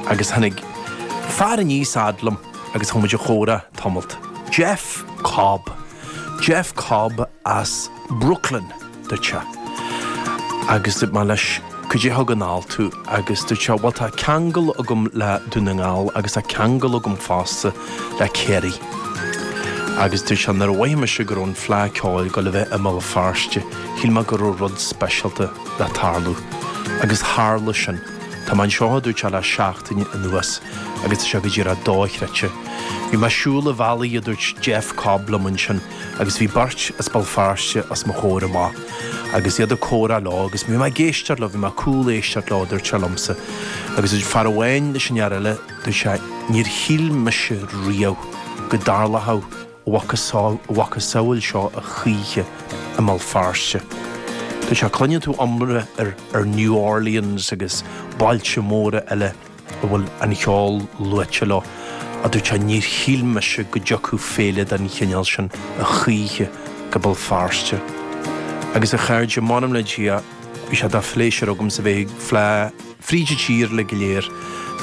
Agus tháinig fear aníos fhad liom agus chuaigh muid a chomhrá tamalt. Jeff Cobb. Jeff Cobb as Brooklyn, dúirt sé. Agus dúirt mé leis Caidé thug anall thú? Agus dúirt sé Bhuel tá ceangal agam le Dún na nGall agus tá ceangal agam fosta le Kerry. Agus dúirt sé Nuair a mhoithigh mise go raibh an Fleá Ceoil ag gabháil a bheith i mBéal Feirste shíl mé go raibh rud speisialta le tarlú. Agus tharla sin. Tá mé anseo, a dúirt sé le seachtain anuas agus tá sé go díreach dochreidte. Bhí mé ag siúl an bhealaigh, a dúirt Jeff Cobb liom ansin agus bhí beirt as Béal Feirste os mo chomhair amach agus iad ag comhrá leo agus bhí mé ag éisteacht leo, bhí mé ag cúléisteacht leo, a dúirt sé liomsa. Agus dúirt fear amháin leis an fhear eile, dúirt sé, Níor shíl mise riamh go dtarlódh a mhacasamhail, a mhacasamhail seo a choíche i mBéal Feirste. Tá a fhios agat, cluineann tú iomrá ar, ar New Orleans agus bailte móra eile a bhfuil an ceol luaite leo. a dúirt sé, níor shíl mise go dtiocfadh féile den chineál sin a choíche go Béal Feirste. Agus a chairde, m'anam le Dia, bhí sé de phléisiúr agamsa bheith ag fleá, fríd a tír uilig go léir,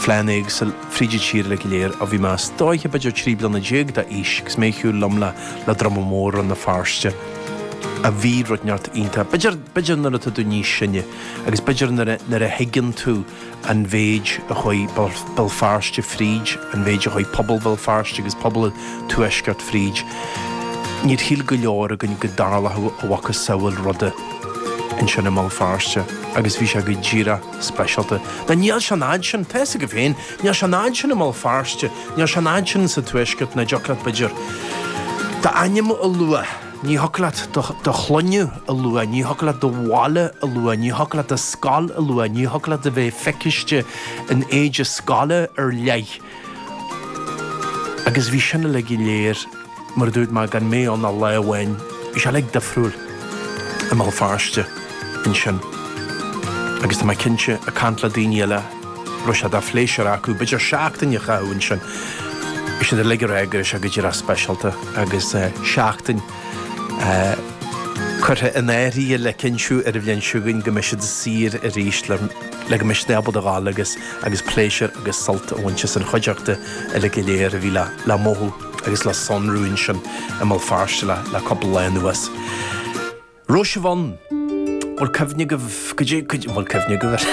fleánna éagsúla fríd a tír uilig go léir, ó bhí mé is dóiche b'fhéidir trí bliana déag d'aois agus mé ag siúl liom le le Druma Mór Rann na Feirste. ach bhí rud inteacht iontach. B'fhéidir, b'fhéidir nuair atá tú níos sine agus b'fhéidir nuair a, nuair a thuigeann tú an méid a chuaigh Béal Feirste fríd, an méid a chuaigh pobal Bhéal Feirste agus pobal an Tuaiscirt fríd, níor shíl go leor againn go dtarlódh a mhacasamhail ruda. ansin i mBéal Feirste agus bhí sé go díreach speisialta. Nó níl sé an fhad sin, tá fhios agat féin, níl sé an fhad sin i mBéal Feirste, níl sé an fhad sin sa Tuaisceart nach dtiocfadh leat b'fhéidir d'ainm a lua, ní thiocfadh leat do shloinne a lua, ní thiocfadh leat do bhaile a lua, ní thiocfadh leat do scoil a lua, ní thiocfadh leat a bheith feicthe in éide scoile ar leith. Agus bhí sin uilig go léir, mar a dúirt mé, gan mé ann ach lá amháin. Bhí sé uilig difriúil i mBéal Feirste ansin. Agus tá mé cinnte, ag caint le daoine eile, go raibh sé de phléisiúr acu b'fhéidir seachtain a chaitheamh ansin. Bhí siad uilig ag rá go raibh sé go díreach speisialta agus seachtain, curtha in áirithe le cinntiú ar an bhliain seo chugainn go mbeidh siad saor arís le go mbeidh siad ábalta a dhul agus agus pléisiúr agus sult a bhaint as an chuideachta uilig go léir a bhí le le mothú agus le sonrú ansin i mBéal Feirste le le cúpla lá anuas. Rose of Aranmore, bhfuil cuimhne agaibh go dtí go dtí bhfuil cuimhne agaibh ar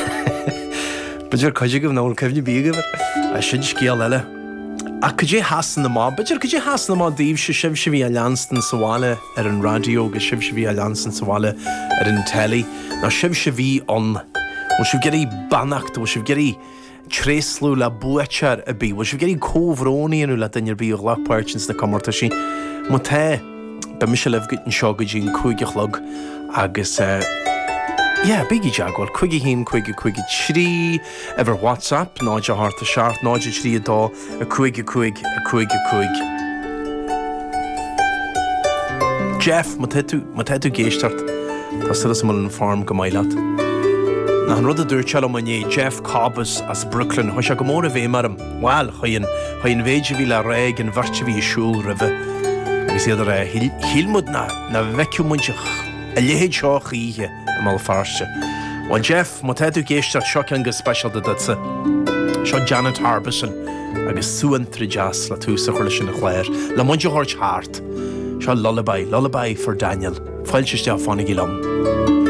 b'fhéidir cuid agaibh nach bhfuil cuimhne ar bith agaibh air. Sin scéal eile. Ach goidé Shasana amach? B'fhéidir, goidé a sheasann amach daoibhse, sibhse a bhí á leanstan sa bhaile ar an raidió agus sibhse a bhí á leanstan sa bhaile ar an teilí, nó sibhse a bhí ann? Bhfuil sibh ag iarraidh beannacht, bhfuil sibh ag iarraidh tréaslú le buaiteoir ar bith? Bhfuil sibh ag iarraidh comhbhrón a dhéanamh le duine ar bith a ghlac páirt ins na comórtaisí? Má tá, beidh mise libh go, anseo go dtí an cúig a chlog agus, yeah, bígí i dteagmháil, 51553. Uimhir WhatsApp, 087 032 55 55. Jeff, má tá tú, má tá tú ag éisteacht, tá súil agam go bhfuil an form go maith leat. Achan rud a dúirt tú liom inné, Jeff Cobbs as Brooklyn, chuaigh sé go mór i bhfeidhm orm. Bhuel, chuaigh an, chuaigh an mhéid a bhí le rá ag an bheirt a bhí ag siúl roimhe agus iad ag rá, shíl, shíl muid nach, nach bhfeicfeadh muid a, a leithéid seo choíche. i mBéal Feirste. Bhuel, Jeff, má tá tú ag éisteacht, seo ceann go speisialta duitse. Seo Janet Harbison agus suantraí deas le tús a chur leis an chlár, le muid a thabhairt thart. Seo lullaby, lullaby for Daniel, fáilte isteach, fanaigí liom.